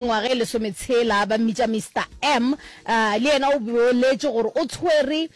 mengwaga e lesometshela, ba mmitša Mister M, le yena o boletše gore o tshwere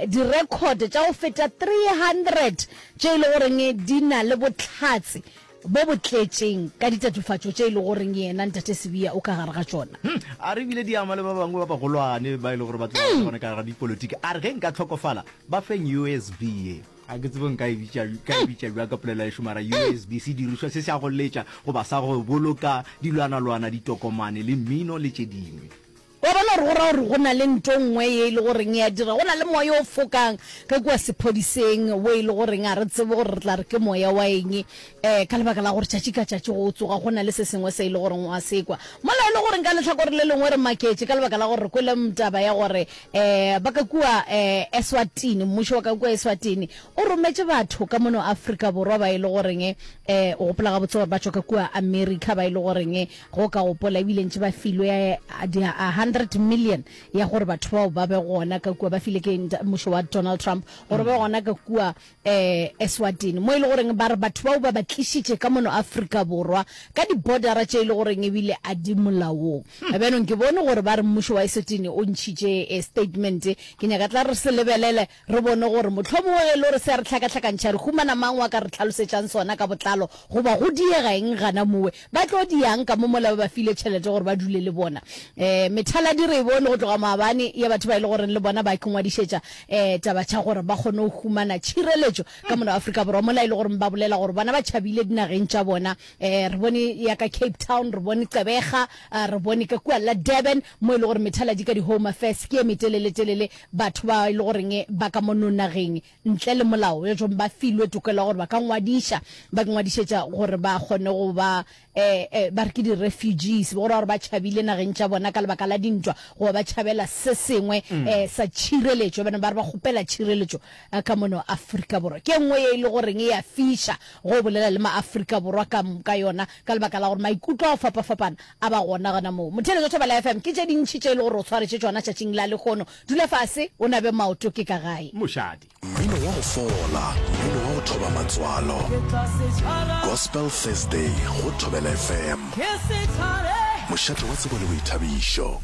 direkhote tša go feta 300 tše e le goreng di na le bohlatse bo bo tletšeng ka ditatofatšo tše e le goreng yena Ntate Sibiya o ka gare ga tšona. A re e bile di ama le ba bangwe ba bagolwane ba e le gore ba tloga ba le gona ka gare ga dipolotiki. A re ge nka hlokofala ba feng usv ye. a ke tsebo nka e bitša ka e bitša bja ka polela ešo mara usb se dirišwa se se a go letša goba sa go boloka dilwanalwana ditokomane le mmino le tše dingwe wa bona gore go ra gore go na le nto nngwe ye e le goreng ya dira go na le moya o fokang ge kua sephodiseng wo e le goreng a re tsebe gore re tla re ke moya wa eng um ka lebaka la gore tšatši ka tšatši go o tsoga go na le se sengwe se e le goreng wa sekwa mola e le goreng ka letlhakore le lengwe re maketše ka lebaka la gore re kwele taba ya gore Eh, ba ka kua eh, Eswatini, mmušo wa ka kua Eswatini o rometše batho ka mono Afrika Borwa ba e le goreng eh, o gopola gabotse gore ba tšwa ka kua America ba e le goreng go ka gopola ebile ntše ba filwe eh, di- a 100 million ya gore batho bao ba be gona ka kua ba file ke nta- mmušo wa Donald Trump gore ba be gona ka kua eh, Eswatini, mo e le goreng ba re batho bao ba ba tlišitše ka mono Afrika Borwa ka dibodara tše e le goreng ebile a di molaong. Hmm. Bjanong ke bone gore ba re mmušo wa Eswatini o ntšhitše eh, statement. Ke nyaka tla re se lebelele re bone gore mohlomongwe ge e le gore se a re tlhakatlhakantšha re humana mang wa ka re tlhalosetšang sona ka botlalo goba go diega eng gana mowe Ba tlo diang ka mo mola ba ba file tšhelete gore ba dule le bona? Um, methaladi re e bone go tloga maabane ya batho ba e le goreng le bona ba ke ngwadišetša um taba tša gore ba kgone go humana tšhireletšo ka mona Afrika Borwa mola e le goreng ba bolela gore bona ba tšhabile dinageng tša bona. Um, re bone ya ka Cape Town, re bone Gqeberha, uh, re bone ka kua la Durban mo e le gore methaladi ka di-home affairs ke ye metelele-telele batho ba e le goreng ba ka mo nonageng ntle le molao, bjatšong ba filwe tokelo ya gore ba ka ngwadiša, ba ingwadišetša gore ba kgone go ba, e, e, ba re ke di-refugees, go ra gore ba tšhabile nageng tša bona ka lebaka la dintwa, goba ba tšhabela se sengwe e, sa tšhireletšo, ba ne ba re ba kgopela tšhireletšo e, ka mono Afrika Borwa. Ke e nngwe ye e le goreng e a fiša ge o bolela le ma-Afrika Borwa ka moka yona, ka lebaka la gore maikutlo a go fapafapana a ba gona gona moo. Motheeletša Thobela FM, ke tše dintši tše e le gore o tshwaretše tšona tšatšing la lehono, Dula fase, o nabe maoto ke ka gae. Mošadi. Mmino wa go fola, mmino wa go thoba matswalo. Gospel Thursday go Thobela FM. Mošate wa tsebo le boithabišo.